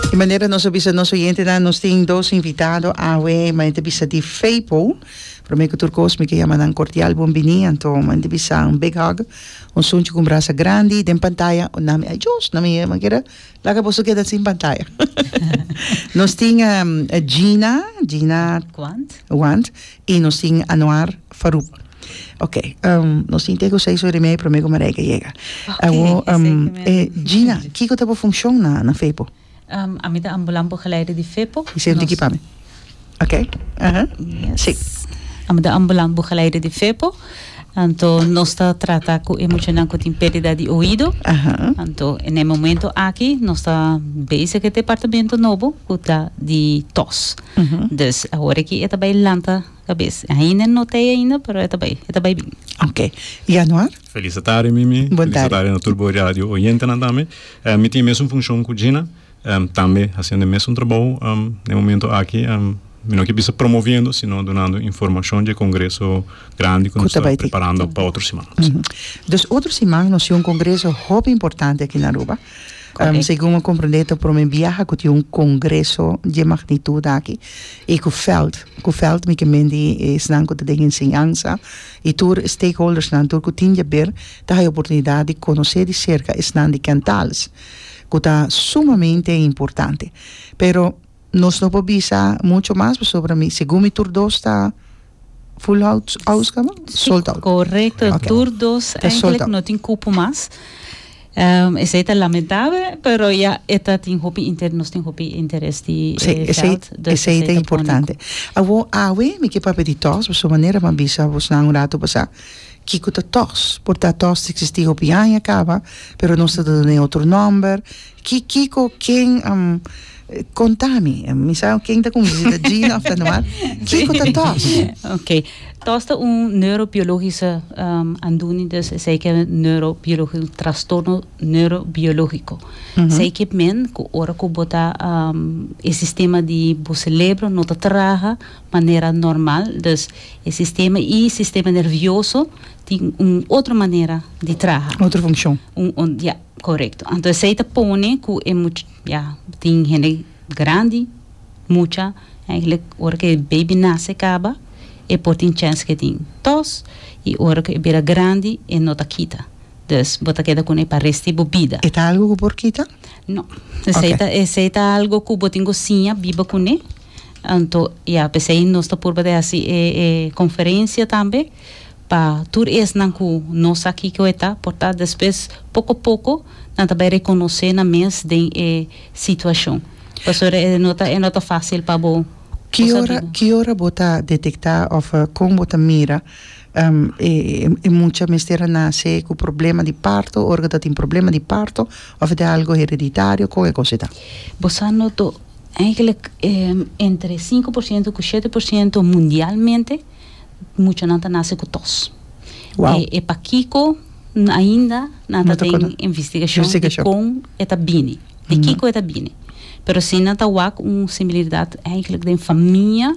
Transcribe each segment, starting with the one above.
Di manera nos a bisa nos oyentenan, nos tin dos invitado awe, ma e ta bisa di Feipo. Promé ku tur kos mi ke yama nan kordial bon biní, anto mi ta bisan big hug, un sunchi ku un brasa grandi. Den pantaya nami ai djos, nami e manera laga boso keda sin pantaya. Nos tin Gina, Gina Want, Y nos tin Anouar Farouk. Ok, um, nos tin teko seis ora y media prome cu Marijke yega. Ok, Awo, e um, seis y media. eh, Gina, kiko ta bo funcion na, na Fepo? Um, ami ta ambulant bogeleider di Fepo. Y sento aquí Nos, pa mi. Ok, aha, yes. sí. Ami ta ambulant bogeleider di Fepo. Anto nos ta trata cu e muchanan cu tin perdida di oido. Aha. Anto en e momento aki nos ta bezig e departamento nobo cu ta di tos. Dus awor aki e ta bai lanta kabes. E ainda no ta ei ainda pero e ta bai, e ta bai bin. Ok. Yanuar? Felis atardi Mimi. Bon tardi. Felis atardi na tur bo radio oyentenan tambe. Mi tin e mesun funshon ku Gina, tambe hasiendo e mesun trabou. Na e momento aki mi no ke bisa promoviendo sino dunando informashon dje kongreso grandi ku nos ta preparando pa otro siman. Dus otro siman nos tin un kongreso hopi importante aki na Aruba. Segun mi a comprende ta prome biaha cu tin un congreso dje magnitud aki y cu veld, cu veld mi ke men di esnan cu ta den enseñansa y tur e stakeholdersnan tur cu tin dje ber ta haya oportunidad di conoce di cerca esnan di Kentals cu ta sumamente importante pero Nos no por bisa mucho mas pasobra mi segun mi tur dos ta full out house kaba? Sold out. Correcto, okay. tur dos ta sold out. no tin cupo mas. Um, esei ta lamentable, pero ya eta tin hopi inter, nos tin hopi interes di sí, eh, esei, geld. Dus esei, esei ta importante. Awo awe mi ke papi di tos, so manera man bisa vos nan un rato pasa. Kiko ta tos? Por ta tos existi hopi aña kaba, pero nos ta done otro nomber, Ki kiko ken konta mi. Mi sa ken ta con visita Gina of ta normal. Kiko ta tos? Ok. Tos ta un neurobiologische aandoening dus esey ke neurobiologi un trastorno neurobiologico. Esey ke men ku ora ku bo ta e sistema di bo selebro no ta traha manera normal dus e sistema i sistema nervioso tin un otro manera di traha. Otro funkshon. Un ya. Korekto. Anto esei ta pone ku e much ya tin hende grandi, mucha, eigenlijk ora ku e beibi nase kaba e por tin chèns ku e tin tòs i ora ku e bira grandi e no ta kita. Dus bo ta keda ku ne pa resti bo bida. E ta algu ku por kita? No. Esei ta Oke. esei ta algu ku bo tin ku siña biba ku ne. Anto ya, p'esei nos ta purba di hasi e e konferensia tambe Pa tur esnan ku no sa kiko e ta, por ta despues poko poko nan ta bai rekonosé nan mes den e situashon. Pasobra e no ta e no ta fásil pa bo Ki ora sabiba. ki ora bo ta detektá òf kon bo ta mira e e mucha mester a nase ku problema di parto ora ku ta tin problema di parto òf e ta algu hereditario kon e kos e ta? Bo sa noto, eigenlijk entre sinku por siento ku shete por siento mundialmente, muchanan ta nase ku tos. Wow. E, e pakiko n- ainda nan No ta ta den kono- investigashon di Investigashon. kon e ta bini, di kiko e ta bini. Pero si nan ta wak un similiridat eigenlijk den famia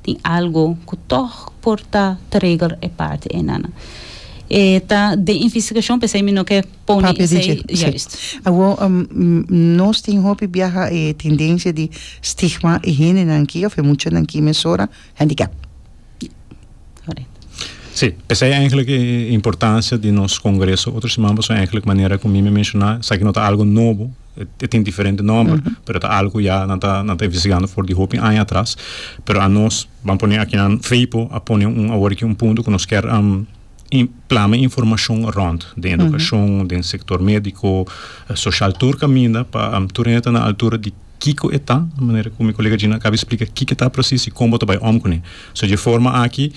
tin algo ku tòg por ta trigger e parti ei nan. E ta den investigashon p'esei mi no ke pone Papia di esei, dje, sí. juist. Awor, um, mm, nos tin hopi biaha e tendensia di stigma e hendenan ki, òf e muchanan ki mesora, handicap. Sí, esei eigenlijk e importancia di nos congreso. Otro siman paso eigenlijk manera cu mi mi menciona, esaki no ta algo nobo, e tin diferente nomber, pero ta algo cu ya nan ta nan ta investigando for di hopi aña atras. Pero a nos, ban pone akinan Feipo a pone un awor aki un punto cu nos ker plama informacion rond den educacion, den sector medico, social tur caminda pa tur ene ta na altura di Kiko e ta, manera ku mi kolega Gina akaba di splika kiko e ta presis i kon bo ta bai om kuné. So dje forma aki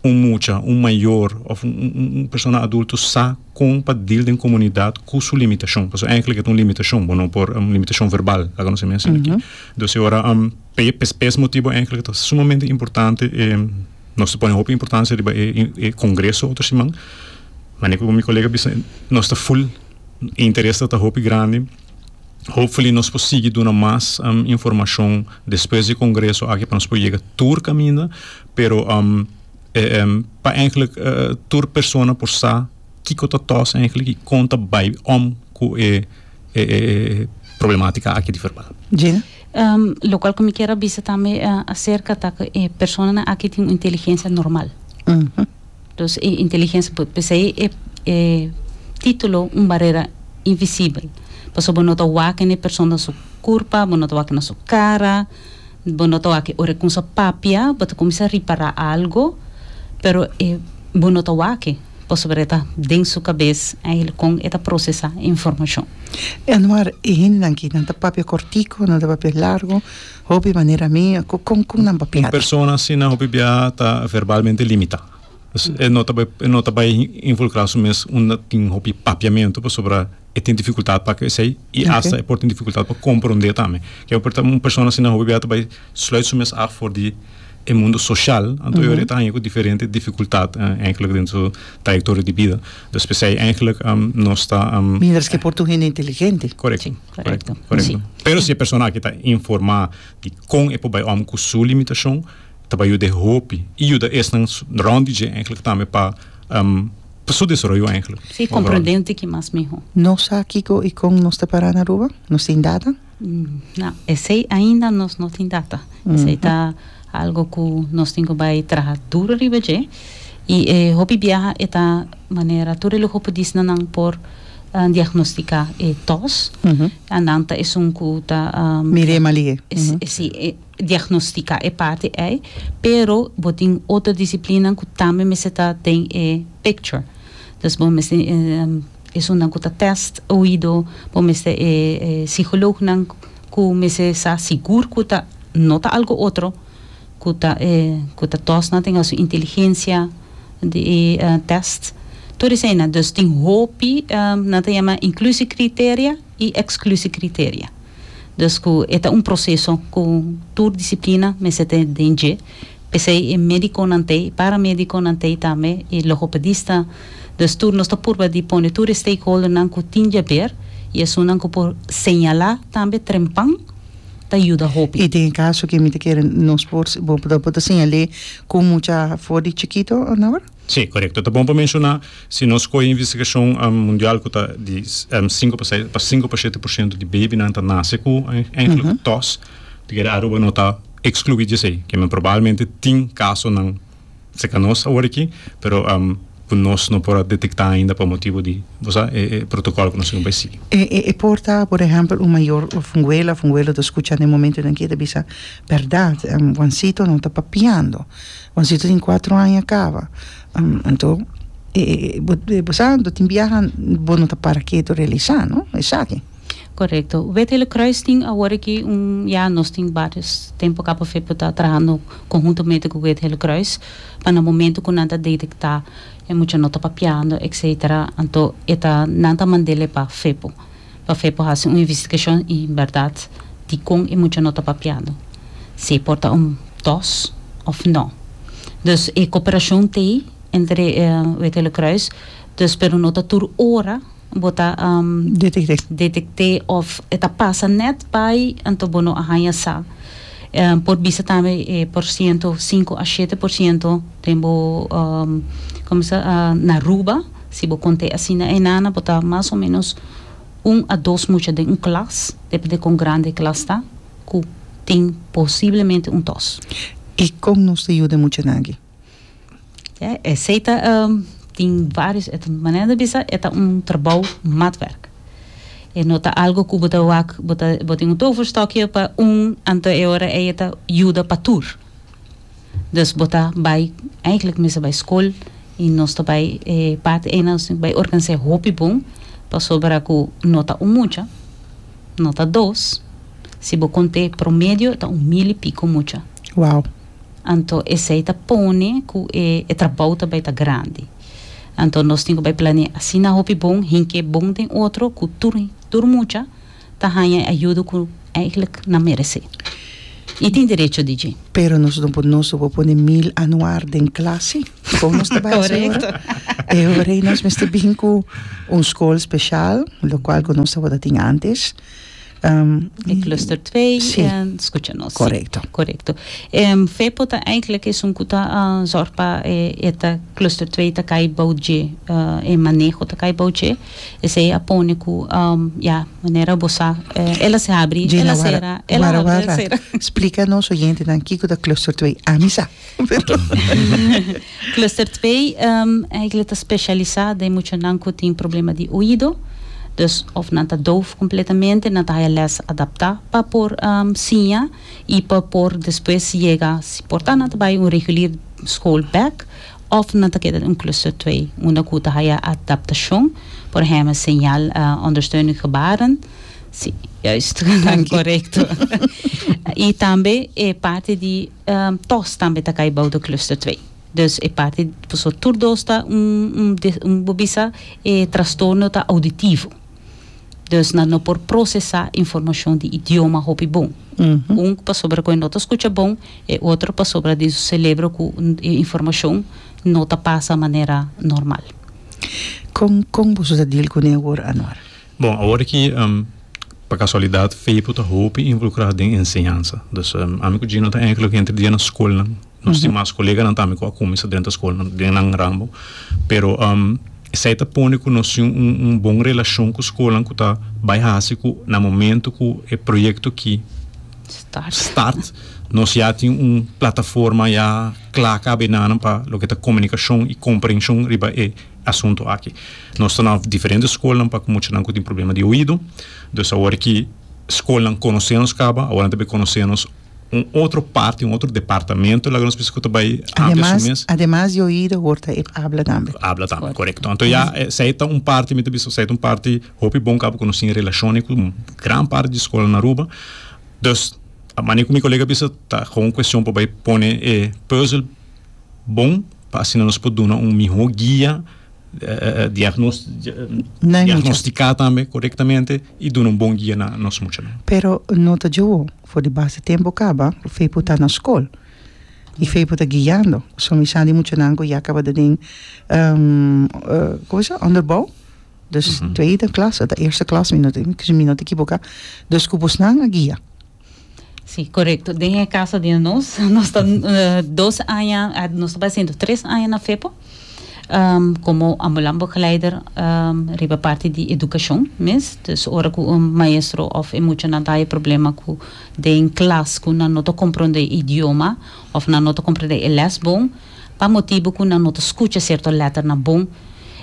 un mucha, un mayor òf un persona adulto sa kon pa dil den komunidat ku su limitashon. Pasobra ènklik e ta un limitashon, bo no por, un limitashon verbal laga nos e mihua sina aki. Entonces ora, p'e p'e motibu ènklik ta sumamente importante e nos ta pone hopi importancia riba e kongreso otro siman. Manera ku mi kolega bisa nos ta full, e interes ta hopi grandi. Hopefully nos por sigui duna mas informashon despues di e kongreso aki pa nos por yega tur kaminda pero pa enkele tur persona por sa kiko ta tòs enkele i kon ta bai om ku e problematika aki di verbal. Gina? Lokual ku mi kier a bisa tambe aserka ta ku e personanan aki tin un inteligensia normal. Entonces e inteligencia por esei e titulo un barera invisibel pasobra bo no ta wak n'e persona su curpa bo no ta wak na su cara bo no ta wak ora e cunsa papia bo ta cuminsa ripara algo pero e bo no ta wak pasobra e ta den su cabez eigenle con e ta procesa e informacion. Anwar e hendenan aki nan ta papia cortico nan ta papia largo Hopi manera mi a cu con cu nan papiado. Un persona asina hopi biaha ta verbalmente limita. Pues e no ta e no ta bay involucra su mes unda tin hopi papiamento pasobra e tin dificultad pa haci esey y hasta e por tin dificultad pa compronde tambe. Ke por un persona asina hopi biaha ta bay sluit su mes af for di e mundo social anto e ora e ta hanja cu diferente dificultad eindelijk den su trayectoria di bida. Dus p'esey eindelijk nos ta. Mindres ke por tur hende inteligente. Correcto. Correcto. Correcto. Sí. Pero si e persona aki ta informá di kon e por bai om ku su limitashon, ta bai yuda e hopi. I yuda esnan rònt di dje eigenlijk tambe pa um, pa su desaroyo eigenlijk. Sí, overal. komprendente ki mas mihó. Nos sa kiko i kon nos ta pará na Aruba? Nos tin data? Na, esei ainda nos no tin data. Esei ta algo ku nos tin ku bai traha duru riba dje. I e hopi biaha e ta manera tur e luho por disna nan por a diagnosticá e tos. Nan ta esun cu ta. Mir'é mal'é. Sí, diagnosticá e parti ei, pero bo tin otro disciplinanan cu tambe mester ta den e picture. Dus bo mester esunnan cu ta test oido, bo mester e psiholoognan cu mester sa sigur cu ta no ta algo otro. ku ta e ku ta tòsnan tin asu inteligensia di e tèst tur eseinan dus tin hopi nan ta yama inklusikriteria i eksklusikriteria dus ku e ta un proseso ku tur disiplina mester ta den dje p'esei e medikonan t'ei e paramedikonan t'ei tambe e logopedista dus tur nos ta purba di pone tur e stakeholdernan ku tin dje aber i esunnan ku por señalá tambe trempan. ta yuda hopi. I tin kaso ke mi ta kere nos por bo bo ta señal'é ku mucha for di chikito nawer? Sí, korekto. Ta bon pa menshoná si nos skohe e investigashon mundial ku ta di sinku pa seis pa sinku pa shete porshento di bebinan ta nase ku enkele ku tòs, ta kere Aruba no ta ekskluí di esei. Kimen probalmente tin kasonan. Se ka nos awor aki pero ku nos no por a detektá ainda pa motibu di bo sa e protokòl ku nos tin bai sigui. E por ta por ehèmpel un mayor òf un wela òf un welo ta skucha den momento nan ke ta bisa bèrdat Wansito no ta papiando Wansito tin kuatro aña kaba anto bo sa anto tin biaha bo no ta para ketu realisá no esaki. Korekto. We het hele kruis tin awor aki un, ya nos tin varios tempo ka pofet por ta trahando konhuntomente ku het hele kruis, pa na momento ku nan ta detektá e mucha no ta papiando etsetera anto e ta nan ta mand'ele pa Fepo, pa Fepo hasi un investigashon i bèrdat dikon e mucha no ta papiando, si e por ta un dos òf nò. Dus e koperashon t'ei entre het hele kruis, dus pero no ta tur ora. bo ta detekt'é òf e ta pasa nèt bai, anto bo no a haña sa. Por bisa tambe e porsiento sinku a shete porsiento den bo na Ruba. Si bo kont'é asina e nana bo ta mas o ménos un a dos mucha den un klas, dependé kon grandi e klas ta, ku tin posiblemente un tòs. I kon nos ta yuda e muchanan aki? Ya esey ta tin varios e ta manera di bisa e ta un trabou matwerk e no ta algo ku bo ta wak bo ta bo tin un toverstokje pa un anto e ora ey e ta yuda pa tur dus bo ta bai eigentlik mester bai skol i nos ta bai e parti eynan nos tin bai organisé hopi bon pasobra ku no ta un mucha no ta dos si bo kont'é promedio ta un mil i piko mucha. Wow. anto esei ta pone ku e e trabou ta bai ta grandi. Anto nos tin ku bai planeá asina hopi bon, hink'é bon den otro ku tur tur mucha ta haña e ayudo ku eigelik nan meresé i tin derecho di dje. Pero nos no por nos no por pone mil anuar den klasi, kon nos ta bai hasi ora? E ora ei nos mester bin ku un skol speshal, lokual ku nos tabata tin antes. E cluster twee si. en skucha nos. Korekto. Si, korekto. E fepo ta eigentlik esun ku ta zòrg pa e e ta cluster twee ta kai bou dje e maneho ta kai bou dje. Esei a pone ku ya manera bo sa el a se habri el a sera el a habri el a sera. Gina wara wara splika nos oyentenan kiko ta cluster twee. Ami sa. Cluster twee eigenlijk ta specialisa den muchanan cu tin problema di oido, dus of nan ta doof completamente, nan ta haya les adapta pa por siña y pa por despues yega, si por ta, nan ta bay un regulier school bek of nan ta keda den un cluster twee unda cu ta haya adaptacion, por ehember señal ondersteuning gebaren, si, juist, corecto, y tambe e parti di. Tos tambe ta cay bou de cluster twee. Dus e parti paso tur dos ta un, bo bisa e trastorno ta auditivo. Dus nan no por procesa informacion di idioma hopi bon. Un pasobra cu e no ta scucha bon, e otro pasobra den su celebro cu e informacion no ta pasa manera normal. Con, con boso ta deal cune awor, Anwar? Bon, awor aki, pa kasualidat Feipo ta hopi involukrá den enseñansa. Dus, ami ku Gino ta èinklik entre dia na skolnan. Nos tin mas koleganan tambe ku a kuminsá drenta skolnan, den nan rambo. Pero esei ta pone ku nos tin un bon relashon ku skolnan ku ta bai hasi ku na momentu ku e proyekto aki start nos ya tin un plataforma ya kla kab'e nanan pa loke ta komunikashon i komprenshon riba e asunto aki. Nos ta na diferente skolnan pa muchanan ku tin problema di oido. Dus awor ki skolnan konosé nos kaba, awor nan ta bai konosé nos un otro parti, un otro departamento laga nos bisa ku ta bai amplia su mes. Ademas, ademas di oido awor ta e abla tambe. Abla tambe, korekto. Anto ya esei ta un parti, mi ta bisa esei ta un parti hopi bon kaba ku nos tin relashon ei ku gran parti di skolnan na Aruba. Dus, mane ku mi kolega a bisa ta kon kueshon pa bai pone e puzzel. bon pa asina nos por duna un miho guia diagnostica tambe corectamente y duna un bon guia na nos muchanan. Pero no ta djoho for di bas di tempo caba Fepo ta na scol y Fepo ta guiando so mi sa di muchanan cu ya cabata den onderbouw dus tweede klas ota eerste klas mi no ta equivoca dus cu bosnan a guia. Sí, korekto. Den e kaso di nos, nos ta dos aña, nos ta haciendo tres aña na FEPO, um, komo ambulanbegeleider um, riba parti di edukashon mes. Dus ora ku un maestro òf e muchanan ta haña problema ku den klas ku nan no ta komprondé e idioma òf nan no ta komprondé e lès bon, pa motibu cu nan no ta scucha cierto letternan bon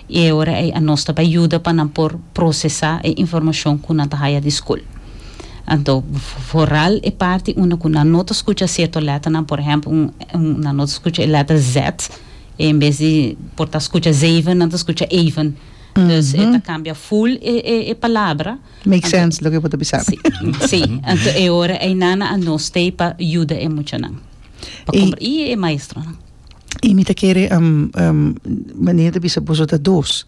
y e ora ey anos ta bay yuda pa nan por procesa e informacion cu nan ta haya di school. Anto, vooral e parti unda cu nan no ta scucha cierto letternan, por ehempel un un nan no ta scucha e letter Z, en bes di por ta scucha zeven nan ta scucha even, dus e ta cambia full e e e palabra. Make Anto, sense loke bo ta bisa. Sí, sí. Anto e ora einana a no stay pa yuda e muchanan. Pa y, compra, y e maestronan. Y mi ta kere um, um, Manini ta bisa boso ta dos.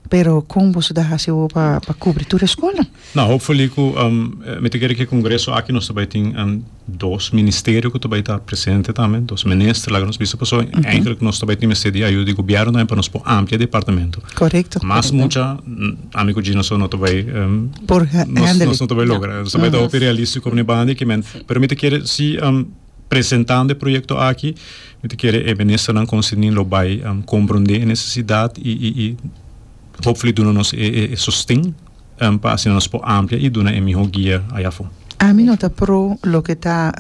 Pero con boso ta haci awo pa, pa cubri tur e schoolnan? No, hopefully cu um, mi ta kere cu e congreso aki nos ta bay tin um, Dos ministerio ku ta bai ta presente tambe, dos minister laga nos bisa pasobra enkele nos ta bai tin mester di ayuda di gobièrnu tambe pa nos por amplia departamento. Korekto. Mas mucha ami ku Gina so no ta bai por hèndel nos no ta bai logra. Nos ta bai ta hopi realístiko ene banda i ke men. Pero mi ta kere si presentando e proyekto aki mi ta kere e ministernan konserni lo bai komprondé e nesesidat i hopfully duna nos e sosten pa asina nos por amplia y duna e miho guia ay afo. Ami no ta pro loke ta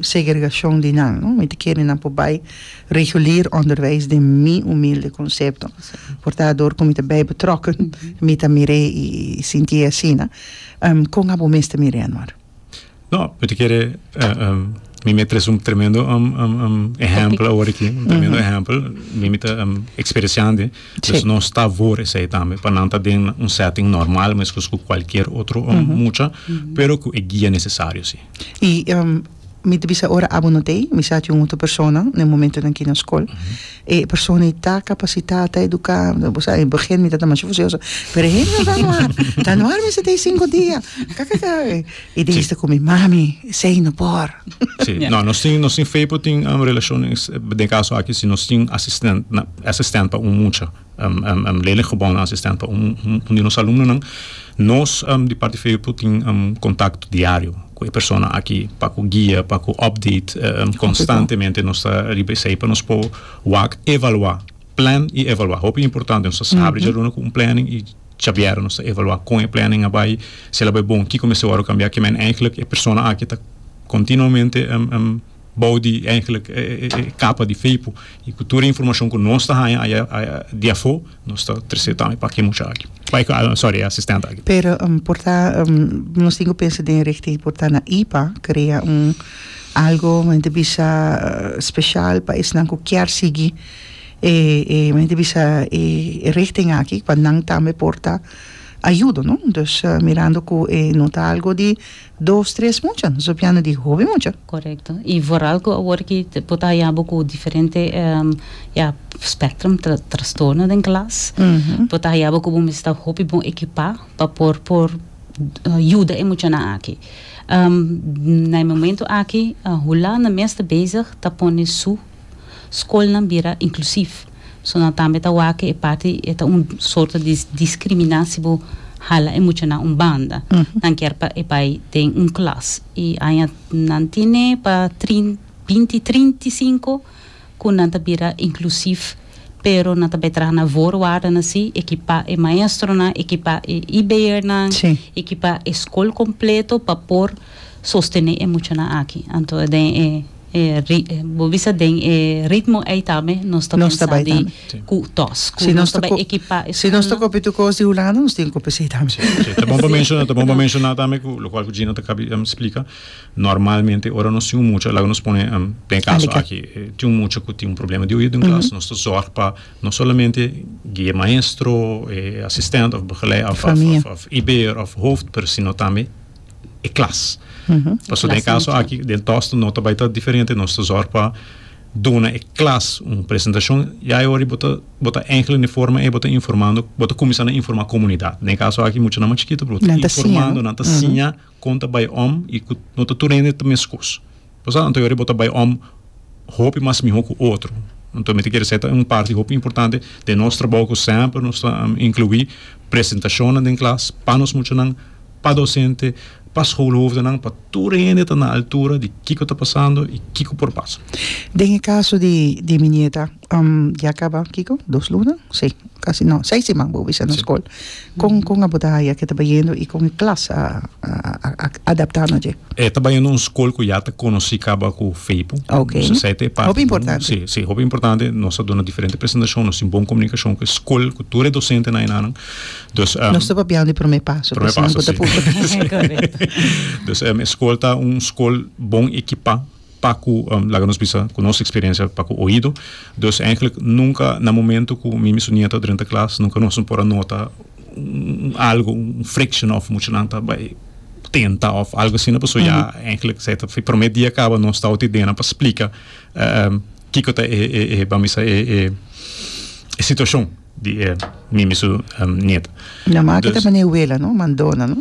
segregacion di nan, no. Mi ta kere nan por bay regulier onderwijs den mi humilde concepto. Por ta door cu mi ta bay betrokken, mi ta mire y sinti asina. Con abo mes ta mire anor? No, mi ta kere mi mi a tres un tremendo ehempel awor aki, un tremendo ehempel, mi mi ta experienciandi, dus nos ta for esei tambe, pa nan ta den un setting normal mescos cu cualkier otro mucha, pero cu e guia necesario si. I mi ta bisa ora abo no t'ei, mi sa cu un otro persona na e momentonan aki na scol. E persona ei ta kapasitá, ta eduká, bo sa e begin mi ta ta masha fusioso, pero e hende ta no har, ta no har mester tei sinku dia, kakaka, i di esta ku mi, mami, esei no por. Sí, no, nos tin, nos tin fei por tin relashon, den kaso aki si nos tin asisten, asistènt pa un mucha. Lelico Bond a asistente pa un di nos alumnonan. Nos di Parti Feepo tin contacto diario cu e persona aki pa cu guia, pa cu update constantemente nos ta riba esey pa nos por wak evalua, plan y evalua. Hopi importante nos ta sabri djaluna cu un planning y djabiera nos ta evalua con e planning a bay, si el a bay bon kico mester worde cambia, kico men. Eigenlijk e persona aki ta continuamente. bou di eigenlijk e e kapa di Feipo i ku tur e informashon ku nos ta haña aya di afó nos ta tres'é tambe pa ke mucha aki pa e sòri e asistente aki. Pero por ta nos tin ku pensa den richting por ta na ipa krea un algo men ta bisa speshal pa esnan ku kier sigui e e men ta bisa e richting aki pa nan tambe por ta ayudo no dus mirando ku e no ta algo di Dos tres mucha, nos a biana di hopi mucha. Correcto. Y vooral cu awor ki bo ta haya bo cu diferente ya spectrum trastorno den klas, bo ta haya bo cu bo mester ta hopi bon ekipa pa por por yuda e muchanan aki. Na e momento aki, Hulanda mes ta bezig ta pone su. Skolnan bira inklusiv, so nan tambe ta wak e parti e ta un sorto di diskrimina si bo hala e muchanan un banda. Nan kier pa e bai den un klas i aña nan tene pa trin binti trinta i sinku ku nan ta bira inklusiv pero nan ta bai traha na voorwaarden asi e kipá e maestronan e kipá e IBRnan Sí. e kipá e skol kompleto pa por sostené e muchanan aki anto den e bo bisa den e ritmo ei tambe nos ta pensa di ku tos ku nos ta bai ekipá e skol. Si nos ta kopi tur kos di Hulanda nos tin kopi esei tambe. Si, ta bon pa menshoná, ta bon pa menshoná tambe ku lokal ku Gina ta kaba di splika, normalmente ora nos tin un mucha, laga nos pone den e kaso aki, tin un mucha ku tin un problema di oido den klas, nos ta zòrg pa no solamente guia e maestro, e asistènt òf begelei òf òf òf òf iber òf hooft, pero sino tambe. e klas. Paso den kaso aki, den Tosto no ta bai ta diferente, nos ta zorg pa duna e klas un presentashon, ya e ora bo ta, bo ta enkele un forma e bo ta informando, bo ta kuminsá na informá komunidat. Den kaso aki mucha nan mas chikitu, pero bo ta informando, nan ta siña kon ta bai om i ku no ta tur hende ta meskos. Pasá anto yori bo ta bai om hopi mas mihó ku otro. Anto mi ta kere esei ta un parti hopi importante den nos trabou ku semper nos ta inkluí presentashonnan den klas pa nos muchanan, pa dosente, pa skoolhoofdenan, pa tur hende ta na altura di kiko ta pasando i kiko por pasa. Den e kaso di di mi nieta Um ya caba kico dos luna si casi no seis siman bo bisa na school con con abo ta haya ke ta bayendo y con e klas a a adapta na dje? E ta bayendo un school cu ya ta conoci caba cu Feipo okay nos ta sai ta e parti hopi importante si si hopi importante nos ta duna diferente presentacion nos tin bon comunicacion cu e school cu tur e docente na enanan dus um nos ta papiando e prome paso prome paso si correcto dus um e school ta un school bon ekipa. pa ku laga nos bisa ku nos eksperensia pa ku oido dus enklik nunka na momento ku mi mi su nieto a drenta klas nunka nos no por a nota un algu un friction òf muchanan ta bai tenta òf algu asina pasobra ya enklik esei ta e promé dia kaba nos ta oti dena pa splika kiko ta e e ban bisa e e e situashon di mi mi su nieto. Ña maka ta mane Wela no, Mandona no.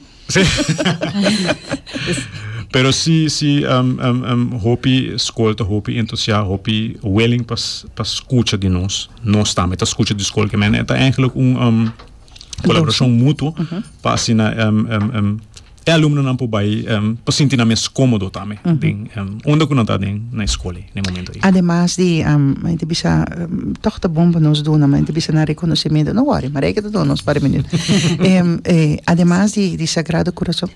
Pero si, si um, um, um, hopi skol ta hopi entusiast, hopi willing pa, pa skucha di nos. Nos tambe ta skucha di skol. Men eta eigenlijk un um, colaboracion mutuo pa asina um, um, um, e alumnonan po bai um, pa sinti na mes komodo tambe. Den, um, onda ku nan ta den na skol. na e momento ei. Ademas di men ta bisa tòg ta bon pa nos duna men ta bisa nan rekonosementu no wòri Marijke ta duna nos par mene ademas di Sagrado Corazon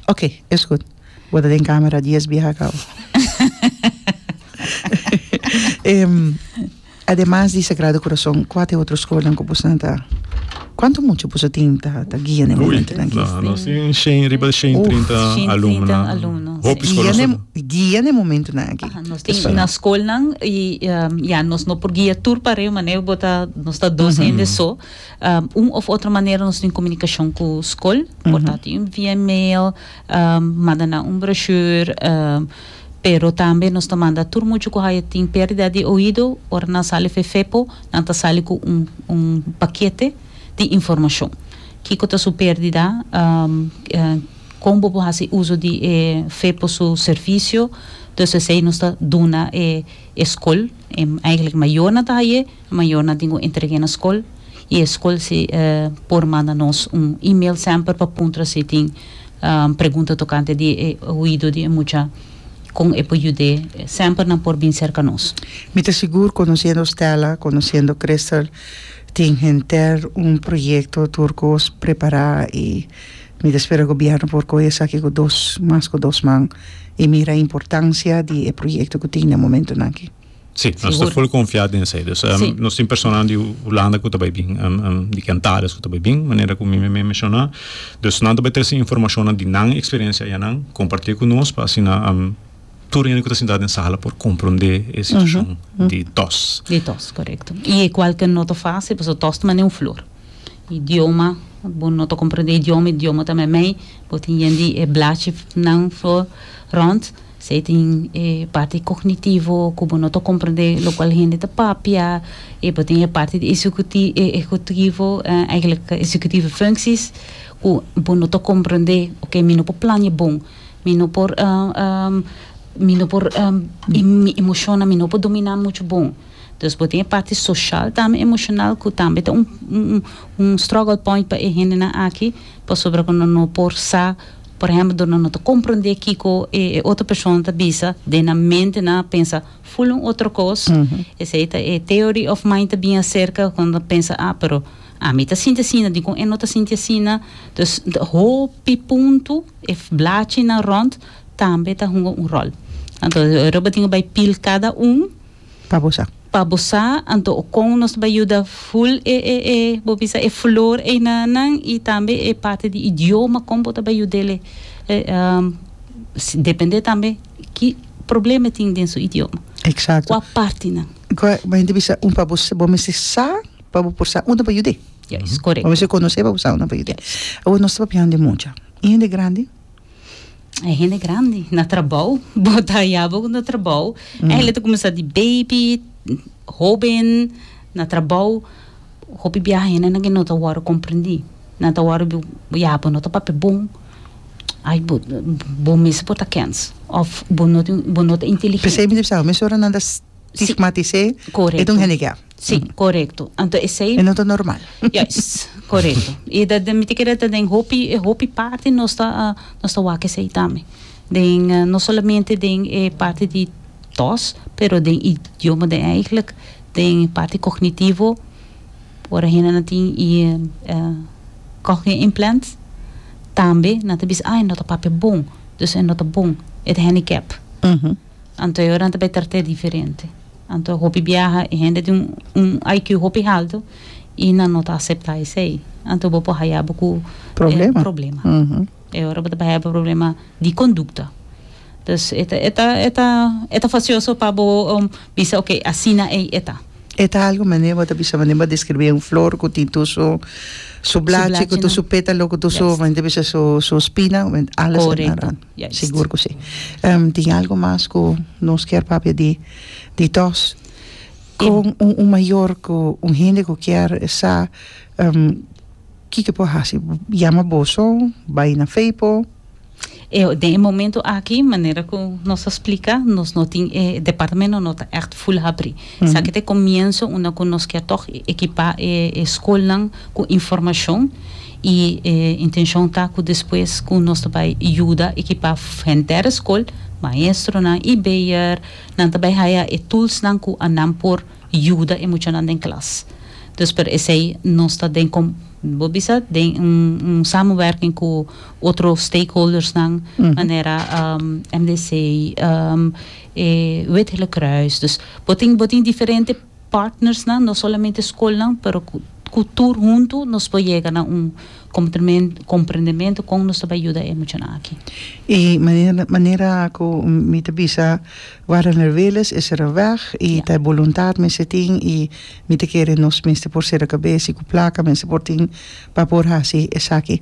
oke es gud bo ta den camera dies biaha kawo. Ademas di Sagrado Corazon cua ta e otro scolnan cu boso nan ta cuanto mucha boso tin ta ta guia na e momentonan aki? Ui, nos tin shen riba di shen trinta alumnonan. Hopi scolnan so ta. Guia na e momentonan aki. Aha, nos tin na scolnan y ya nos no por guia tur pare manera bo ta nos ta dos hende so un of otro manera nos tin comunicacion cu scol por tanto via email manda nan un brochure. Pero tambe nos ta manda tur muchu ku haya tin perdida di oido, ora nan sali Fefe-po, nan ta sali ku un un pakete di informashon. Kiko ta su perdida, kon bo por hasi uso di e Fefe-po su servisio, entonces esei nos ta duna e e skol, e, eigentlik e mayornan ta haya e. Mayornan tin cu entreg'e na scol y e scol si por manda nos un email semper pa puntra si tin pregunta tocante di e oido di e mucha, con e por yud'e, semper nan por bin cerca nos. Mi ta sigur, conociendo Stella, conociendo Crystal, tin henter un proyecto tur cos prepara y mi ta spera Gobierno por coge esaki cu dos, mas cu dos man y mira e importancia di e proyecto cu tin na momentonan aki. Sí, nos ta full confia den esey. Dus sí. nos tin personanan di Hulanda ku ta bai bin, um, um, di Cantarias ku ta bai bin, manera ku mi me menciona. Dus nan ta bai trese informacionnan di nan experiencia ayanan, comparti ku nos pa asina um, tur hende ku ta sinta den sala por comprende e situacion uh -huh. di tos. Di tos, correcto. Y e cual ke no ta fácil, paso tos ta mane un flor. Idioma, bo no ta comprende idioma, idioma ta mei, bo tin yen di e blachi nan flor rond. Si e tin e parti kognitivo ku bo no ta komprendé lokual hende ta papia, i bo tin e parti di esekuti ekekutivo, eigelik executive functies, ku bo no ta komprendé, oké mi no por plaña bon, mi no por mi no por i mi emoshonnan mi no por dominá muchu bon. Entonces bo tin e parti soshal tambe emoshonal ku tambe ta un un struggle point pa e hendenan aki pasobra ku nan no por sa. Por ehempel, dor nan no ta comprende kico e otro persona ta bisa, den nan mente nan a pensa full un otro cos. Esey ta e theory of mind ta bin acerca con ta pensa, ah, pero ami ta sinti asina, dicon e no ta sinti asina? Dus, hopi punto e blachi nan rond tambe ta hunga un rol. Anto, e robert tin a bay pil cada un. pa bo sa. Pa bo sa, anto o kon nos bai yuda ful e e e bo bisa e flor eina nan i tambe e parte di idioma kon bo ta bai yudele depende tambe ki problema e tin den su idioma. Exacto. Kua parti nan. Kua bo hende bisa un pa bo sa bo mester sa pa bo por sa un ta bai yude. Yes, correcto. Bo mester conoce pa bo sa un ta bai yude. Yes. Awor nos ta papiando di mucha. E hende grandi. E hende grandi na trabou, bo ta hallabo ku na trabou. E hende ta kuminsá di baby, hóben, na trabou. Hopi biaha hende nan ke no ta wòrdu komprendí. Nan ta wòrdu di, ya, bo no ta papia bon. Ai, bo, bo mes por ta kèns. Òf bo no tin, bo no ta inteligente. P'esei mi ta bisa, mesora nan ta stigmatis'é, e ta un handicap. Si, korekto. Anto esei. E no ta normal. Juist, korekto. I dat mi ta kere ta den hopi e hopi parti nos ta nos ta wak esei tambe. Den no solamente den e parti di tòs pero den idioma den eigelijk den parti kognitivo ora hende nan tin i cochlear implants tambe nan ta bisa a e no ta papia bon dus e no ta bon e ta handicap anto e ora nan ta bai trate diferente. Anto hopi biaha e hende tin un IQ hopi haltu y nan no ta acepta esey. Anto bo por haya bo cu e problema. E ora bo ta bay haya bo problema di conducta. Dus e ta e ta e ta e ta facioso pa bo bisa ok asina ey e ta. E ta algo manera bo ta bisa manera bo a describi un flor cu tin tur su su blachinan, cu tur su petalo, cu tur su men ta bisa su su spina, alas ta naranja. Ya, sigur ku si. Tin algu mas ku nos kier papia di di dos. Kon un un mayor ku un hende ku kier sa kiko e por hasi? Yama boso, bai na feipo. Eo, den e momento aki manera ku nos a splika nos no tin e departamento no ta ègt full habri. Esaki ta e komienso unda ku nos kier tòg ekipá e e skolnan ku informashon. i e intenshon ta ku despues ku nos ta bai yuda ekipá henter skol, maestronan i beheer nan ta bai haya e tulsnan ku a nan por yuda e muchanan den klas. Dus per esei nos ta den kom bo bisa den un samenwerking ku otro stakeholdersnan manera MDC, e Wit Hele Kruis, dus bo tin bo tin diferente. partnersnan, no solamente scolnan, pero cu tur hunto nos por yega na un comprendemento con nos ta bay yuda e muchanan aki. Y manera cu mi ta bisa Warener Willis e cera weg y ta e boluntad mester tin y mi ta kere nos mester por cera cabeza y cu placa mester por tin pa por haci esaki.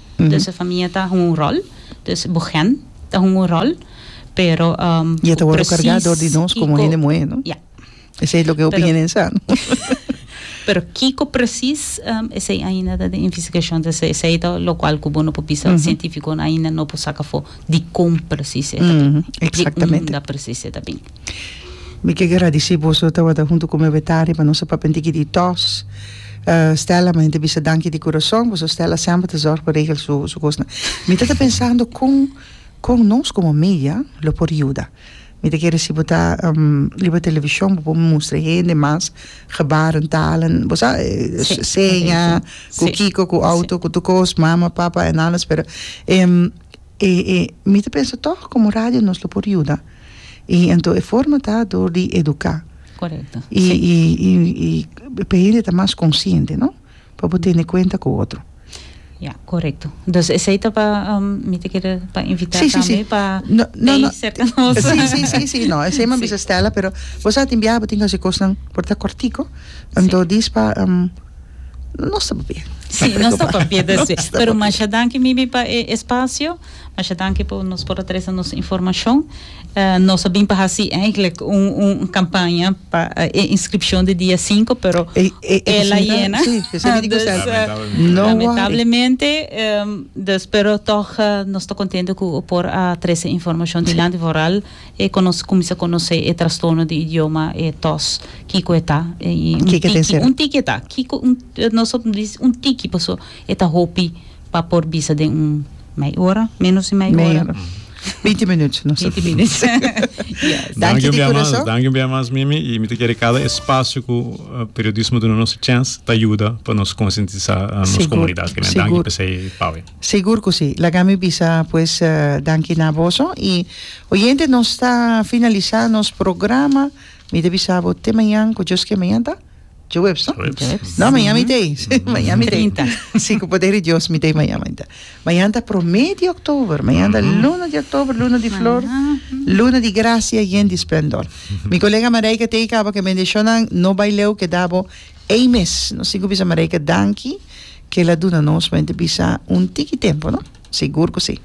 Dus e famia ta hunga un ròl, dus bo hèn ta hunga un ròl, pero ku presis kiko. I e ta wòrdu kargá dor di nos komo hende muhé, no? Ya. Esei loke hopi hende sa, no? Pero kiko presis, esei ainda ta den investigashon. Dus esei ta lokual ku bo no por bisa, sientífikonan ainda no por saka afó dikon presis e ta bin, di unda presis e ta bin. Mi ke gradisí boso lo tabata huntu ku mi Betania pa nos a papia un tiki di tòs. Stella mi ta bisa danki di kurason pasobra Stella semper ta zòrg pa regla su kosnan. Mi ta ta pensando kon kon nos komo media lo por yuda. Mi ta kere si bo ta riba televishon bo por mustra e hende mas gebaren, talen, bo sa seña, ku kiko, ku outo, ku tur kos, mama, papa, en alles pero mi ta pensa tog komo radio nos lo por yuda. I ento e forma ta dor di eduká. Korekto. I i i i pa hende ta mas konsiente, no? Pa bo tene kuenta ku otro. Ya, korekto. Dus esei ta pa mi ta kere pa invitá tambe. Si, si, si. Pa no, no, no. serka nos. Si, si, si, si, no. Esei mi a bisa Stella, pero bo sa tin biaha bo tin hasi kosnan por ta kòrtiku. Anto dis pa Nos ta papia. Si, nos ta papia, pero masha danki Mimi pa e espasio. Masha danki por nos por a trese nos informacion. Nos a bin pa haci eigenlijk un un campaña pa e inscripcion di dia sinku pero e la yena lamentablemente dus pero tog nos ta contento cu por a trese informacion dilanti vooral e conoce cuminsa conoce e trastorno di idioma e tos kico e ta y un tiki un tiki e ta kico nos a dici un tiki pasobra e ta hopi. pa por bisa den un mei ora, menos di mei ora. Mei ora. Binti minut nos a fini. Binti minut. Ya. Danki di kurason. Danki un bia mas Mimi i mi ta kere kada espasio ku periodismo duna nos e chens ta yuda pa nos konsientisá nos komunidat. Sigur. Sigur. Danki p'esei Pawe. Sigur ku si. Laga mi bisa pues danki na boso i oyente nos ta finalisá nos programa. Mi ta bisa bo te mañan ku Dios ke mañan ta. Jueps, no? Jueps. No, mañana mi tei. Mañana mi tei. Trinta. Sí, con poder de Dios, mi tei mañana. mañana. Mañana ta promé de oktober. Mañana ta luna de oktober, luna di flor, luna di gracia yen di splendor. Mi colega Marijke tei caba que bendicionnan no bai leu, keda bo ei mes. Nos tin cu bisa Marijke danki, kela duna nos, men te bisa un tiki tempo, no? Sigur cu sí.